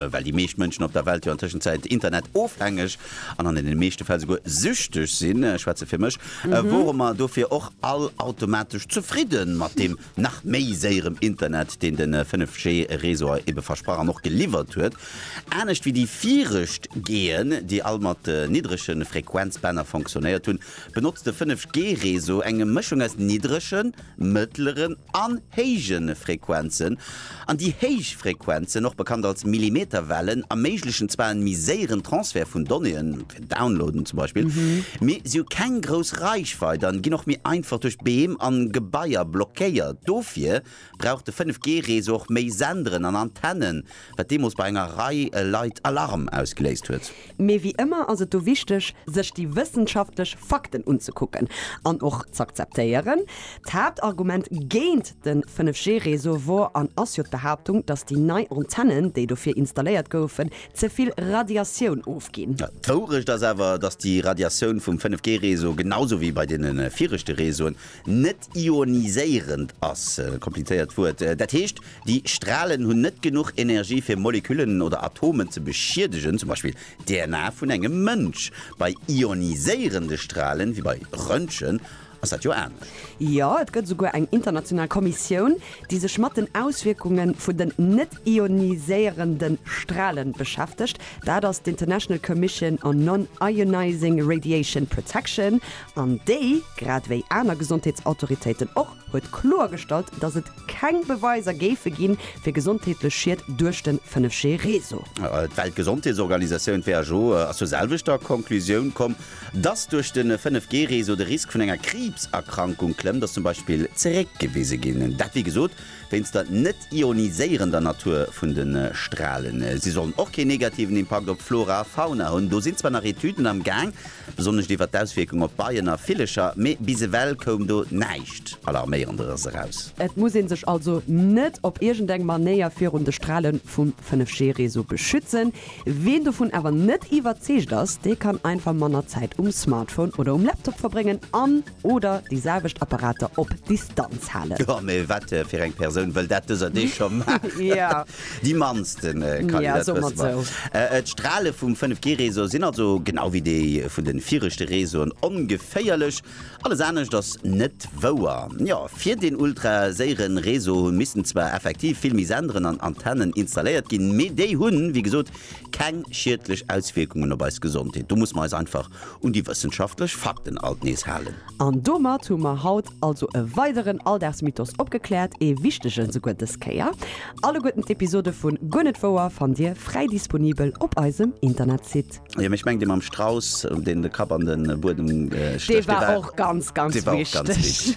Well déi meescht Mënschen op der Welt jo an Tëschenzäit Internet-ofhängeg an an deene meeschte Fäll souguer süchteg sinn, ech schwätze fir mech, wore mer dofir och all automatesch zefridde mat deem nach méi séierem Internet, deen de 5G-Réseau ebe versprach an och geliwwert huet. Anescht wéi déi viregt Geen, déi all mat niddrege Frequenzbänner fonctionnéiert hunn, benotzt de 5G-Réseau eng Mëschung aus niddregen, mëttleren an héije Frequenzen, an déi héich Frequenzen, och bekannt als Millimeterwellen, erméiglechen zwar en méi séieren Transfert vun Donnéeën, fir Downloaden zum Beispill, mee si hu keng grouss Reichweit an ginn och méi einfach duerch Beem an Gebaier blockéiert. Dofir brauch de 5G-Réseau och méi Senderen an Antennen, wat deemools bei enger Rei Leit Alarm ausgeléist huet. Mee wéi ëmmer ass et do wichteg, sech déi wëssenschaftlech Fakten unzekucken an och z'akzeptéieren. D'Haaptargument géint de 5G-Réseau wor an ass jo d'Behaaptung, datt déi nei Antennen, déi dofir installéiert goufen, ze vill Radiatioun ofginn. D'Wourecht ass awer, datt déi Radiatioun vum 5G-Réseau, genau sou wéi bei deene viregte Réseauen, net ioniséierend ass, komplizéiert Wuert, dat heescht, Déi Stralen hunn net genuch Energie fir Moleküllen oder Atomen ze beschiedegen, zum Beispill d'DNA vun engem Mënsch. Bei ioniséierende Stralen, wéi bei Röntgen, ass dat jo anescht. Jo, et gëtt esouguer eng international Kommissioun, déi sech mat den Auswierkunge vun den net-ioniséierende Strale beschäftegt. Dat ass d'International Commission on Non-Ionizing Radiation Protection, an déi, grad ewéi aner Gesondheetsautoritéiten och, huet kloergestallt, datt et, keng Beweiser géife ginn, fir gesondheetlech Schied duerch de 5G-Réseau. D'Weltgesondheetsorganisatioun, who, ass zur selwechter Conclusioun komm, dass duerch de 5G-Réseau de Risk vun enger Kriibserkrankung klëmmt, ass zum Beispill zeréckgewise ginn. Dat, wéi gesot, wéinst der net-ioniséierender Natur vun de Stralen. Si sollen och keen negativen Impakt op d'Flora a Fauna hunn. Do sinn zwar nach Etüden am Gaang. Besonnescht iwwer d'Auswierkung op Beien a Villecher, mee bis ewell koum do näischt Alarméierenderes eraus. Et muss een sech also net op iergend eng Manéier virun de Strale vum 5G Réseau beschützen. Ween dovun awer net iwwerzeegt ass, dee kann einfach manner Zäit um Smartphone oder um Laptop verbréngen an oder déi selwecht Apparater op Distanz halen. Jo, mee wat fir eng Persoun wëll dat dëser Deeg scho maachen? Déi mannste Kali, dat wësse mer. D'Strale vum 5G-Réseau sinn also, genau wéi déi vun de viregte Réseauen, ongeféierlech. Alles anescht ass net wouer. Jo, fir deen ultraséiere Réseau hu missten zwar effektiv vill méi Senderen an Antennen installéiert ginn, mee déi hunn, wéi gesot, keng schiedlech Auswierkungen op eis Gesondheet. Do musse mer eis einfach un déi wëssenschaftlech Fakten alt nees halen. An domat hu mer haut Also e weideren Alldagsmythos opgekläert, ee wichtegen souguer dës Kéier. Alleguerten d'Episode vu Guer net wouer fannt Dir fräi disponibel op eisem Internetsite. Jo mee ech mengen dee mam Strauss deen de Kapp an den Buedem stécht, dee war och ganz ganz wichteg.